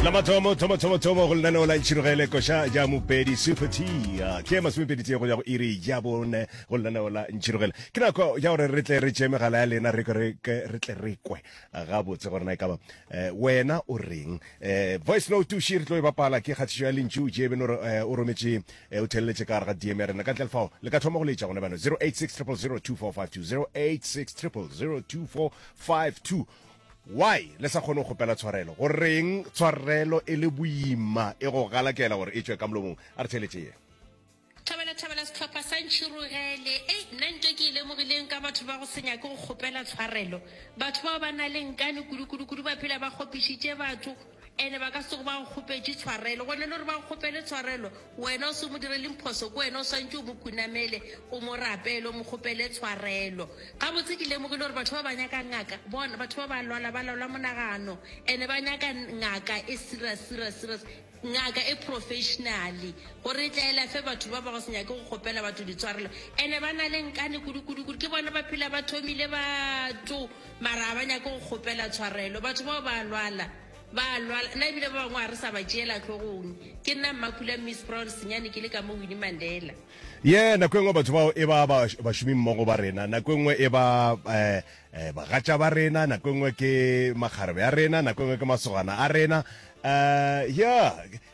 la mathomo thomo thomo thomo go lenaneo la ntšhirogele koša ja mopedi supatia ke masomepedi tse go ya go iri ja bone go lenaneo la ntšhirogele ke nako ja gore re tle re tšee megala ya lena re tle re kwe gabotse gore na e kaba eh, wena o reng eh, voice note tuši re tlo e bapala ke kgathišo ya lentšu jebeno eh, o rometše o theleletše ka gare ga dm ya rena ka ntle lefao le ka thoma go letša gone bano 086 086 Why le sa kgone go kgopela tshwarelo? Goreng tshwarelo e le boima e go galakela gore e tšwe ka molomong? A re theletše ye. Thabela Thabela sehlopha sa Ntšhirogele. Ei, nna ntwa ke e lemogileng ka batho ba go se nyake go kgopela tshwarelo. Batho bao ba na le nkane kudu-kudu-kudu ba phela ba kgopišitše batho. Ene ba ka sego ba go kgopetše tshwarelo. Gona le gore ba go kgopele tshwarelo, wena o se mo direleng phoso, ke wena o swantše o mo khunamele, o mo rapele, o mo kgopele tshwarelo. Gabotse ke lemogile gore batho ba ba nyaka ngaka, bona, batho ba ba lwala, ba lwala monagano, ene ba nyaka ngaka e serious, serious, serious, ngaka e professionally, gore e tla e lafe batho ba ba go se nyake go kgopela batho ditshwarelo. Ene ba na le nkane kudu, kudu, kudu, ke bona ba phela ba thomile batho. Mara a ba nyake go kgopela tshwarelo. Batho bao ba a lwala. Ba a lwala. Nna ebile ba bangwe ga re sa ba tšeela hlogong. Ke nna Mmakula mme Sproul Senyane ke le ka mo Winnie Mandela. Ye, nako e nngwe batho bao e ba ba, bašomimmogo ba rena, nako e nngwe e ba, eh, eh, bagatša ba rena, nako e nngwe ke makgarebe a rena, nako e nngwe ke masogana a rena. Eh, yeah.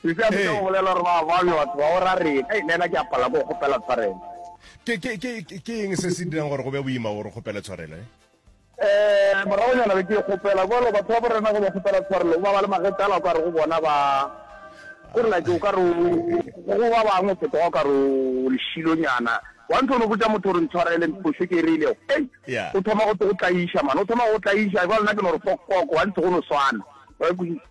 Sesi a leka go bolela gore ba ba bjo batho ba go ra reng, Hei, nena ke a palela ke go kgopela tshwarelo. Ke, ke, ke, ke eng se se dirang gore go be boima gore o kgopele tshwarelo, he? Ee, moragonyana be ke e kgopela. Bjalo, batho ba bo rena ge ba kgopela tshwarelo, ba ba le magetla ala o ka re go bona ba, go re like o ka re o, go ba bangwe o fetoga o ka re o lešilonyana. Wa ntho o no botša motho gore ntshwarele phošo ke e re ilego, hei, Yeah. o thoma go, go tlaiša, man, o thoma go go tlaiša. Jwale nna ke no re fokfoko, wa ntho go no swana. Wa e kwešiša?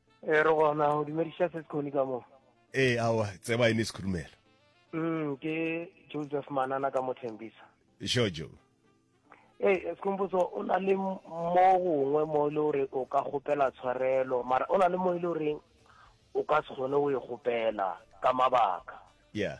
Ee, re gona go dumediša se sekgoni ka mo. Ee, awa, tseba e ne sekhurumela. Mm, ke Joseph Manana ka Mothembisa. Jojo. Ee, sekhomposo o na le mo gongwe mo e le gore o ka kgopela tshwarelo, mara o na le mo e le goreng o ka se kgone go e kgopela ka mabaka. Yeah.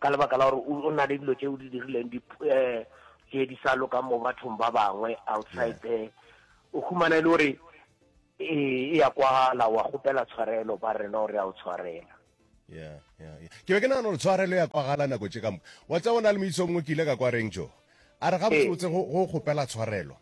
Ka lebaka la gore o na le dilo tše o di dirileng di tše di sa lokang mo bathong ba bangwe outside there o humana e le gore e e ya kwagala wa gopela tshwarelo ba rena gore a o tshwarela yeah yeah ke be ke nagana gore tshwarelo ya kwagala nako tše ka moka wa tsa bona le moitso mongwe ke ile ka kwa reng jo a re ga botsebotse go gopela tshwarelo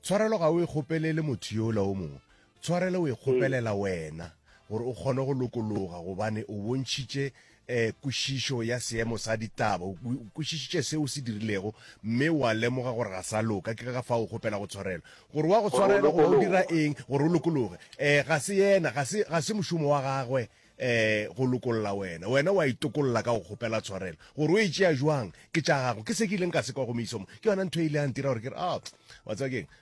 tshwarelo ga o e gopelele motho yola o mongwe Tshwarelo o e kgopelela wena gore o kgone go lokologa gobane o bontšhitše um kwešišo ya seemo sa ditaba. O kwešišitše seo o se dirilego mme wa lemoga gore ga sa loka. Ke ka fao o kgopelago tshwarelo. Gore wa go tshwarela goba o dira eng gore o lokologe, um ga se yena, ga se, ga se mošomo wa gagwe um go lokolla wena. Wena wa itokolla ka go kgopela tshwarelo. Gore o e tšea bjang ke tša gago. Ke se ke ileng ka se kwa go Misomo, ke yona ntho e ile ya ntira gore ke re, Aoh, wa tseba ke eng?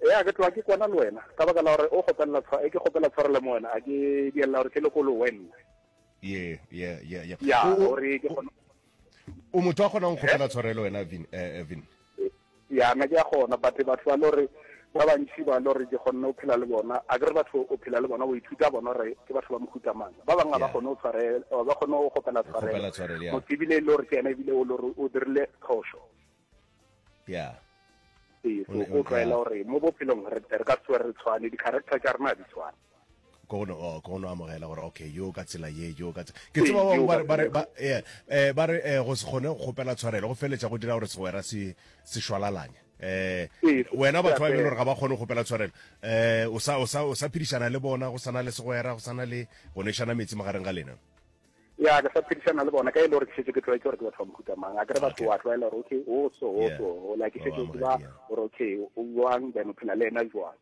Eya, ke tloga ke kwana le wena, ka baka la gore o kgopelela tshwa, e ke kgopela tshwarelo mo wena, a ke diella gore ke le kolo wenna. Ye, ye, ye, ye. Ya, O- o- gore ke kgona. O motho a kgonang go kgopela eh? tshwarelo wena, Vin, eh, eh, Vin. Ya, nna ke a kgona, but batho ba lo re ba bantši ba lo re ke kgonne go phela le bona, a ke re batho o phela le bona, o ithuta bona gore ke batho ba mohuta mang. Ba bangwe ga ba Yeah. kgone go tshwarela, ba kgone go kgopela Go kgopela tshwarelo, tshwarelo, yeah. motho ebile e le gore ke ena ebile o lo re o dirile phošo. ya ee so go tlwaela gore mo bophelong re ka se re tshwane di-character tša rena di tshwane kono oh, kono amogela gore okay yo ka tsela ye yo ka ke tseba ba ba ba ba eh, eh ba re eh, go se gone go gopela tshwarelo go feletsa go dira gore segwera se se shwalalanye eh wena batho ba e gore ga ba gone go gopela tshwarelo eh o sa o sa o sa phidishana le bona go sana le segwera go sana le go neshana metsi magareng ga lena ya ke sa phedišana le bona ka e le gore ke šetše ke tlwaetse gore ke batho ba mohuta mang a kere batho wa tlwaela gore okay o so o so o la ke šetše ke ba gore okay o jwang then o phela le ena jwang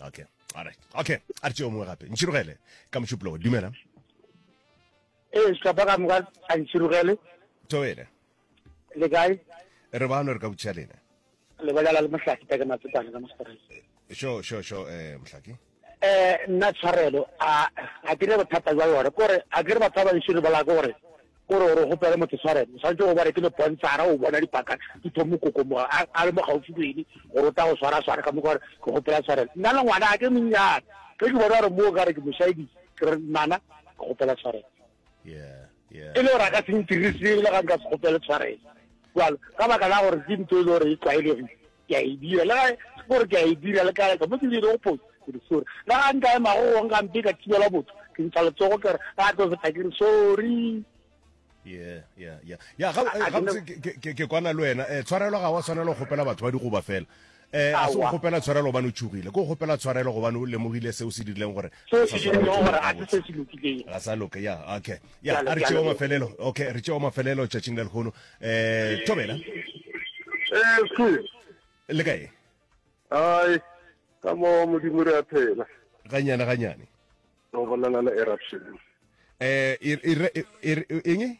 okay all right okay a re tšeo mongwe gape ntšhirogele ka mošupologo dumela ee shlapa ka moka a ntšhirogele tobele le kae re bano re ka botšiša lena lebelela le mohlaki peke matsepane ka mostereng sure sure sure eh mohlaki eh nna tshwarelo a a ke re bothata jwa yone kore a ke re batho ba bantši re bola ke gore kore gore go pele motho tshwarelo santse go bare ke le bontshara o bona dipaka di tho mokoko mo a le mo gaufi le ene gore o ta go swara swara ka mo gore ke go pela tshwarelo nna le ngwana a ke monnyane ke ke bona gore mo ka re ke moshayedi ke re mana ke go pela tshwarelo e le gore a ka se ntirise ebile ga nka se kgopele tshwarelo jalo ka baka la gore ke ntho e le gore e tlwaelegile ke a e dira le ga gore ke a e dira le kae ka mo ke dire go phoso ke re sorry le ga nka ema go gong ka mpe ka thibela botho ke ntsha letsogo ke re ga tlo feta ke re sorry yeah yeah yeah ya ga ke kwana le wena eh tshwarelo ga wa tshwanela go gopela batho ba dikgoba fela E, ga se go kgopela tshwarelo gobane o tšhogile, ke go kgopela tshwarelo gobane o lemogile seo se dirileng gore seo se dirilego gore ga se se se lokileng ga sa loka ya okay ya a re tšeo mafelelo okay re tšeo mafelelo tšatšing le lehono um thobela eh, le kae ai ka mo modimo re a phela ganyane ganyane o bolana le eruption eh eng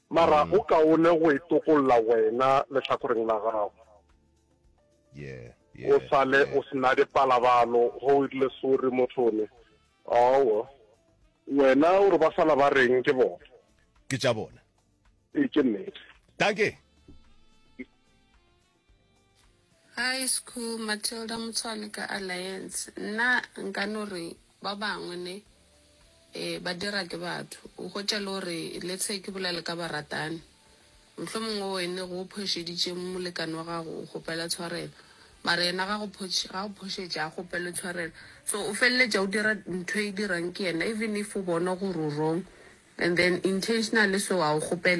Mara go kaone go e tokolla wena lehlakoreng la gago. O sale o se na dipalabalo ge o irile sorry mothone. Aowa. Wena o re ba sala ba reng ke bona? Ke tša bona. Ee, ke nnete. Dankie. Hi school, Matilda Motshwane ka Alliance. Nna nka no re ba bangwe ne e ba dira ke batho o hwetša le gore le tshe ke bolele ka baratani mohlomongwe o ene go o phošeditše molekane wa gago o kgopela tshwarelo mara yena ga go photš- ga go phošetše a kgopele tshwarelo so o feleletša o dira ntho e dirang ke yena even if o bona gore o wrong and then intentionally so a o kgopele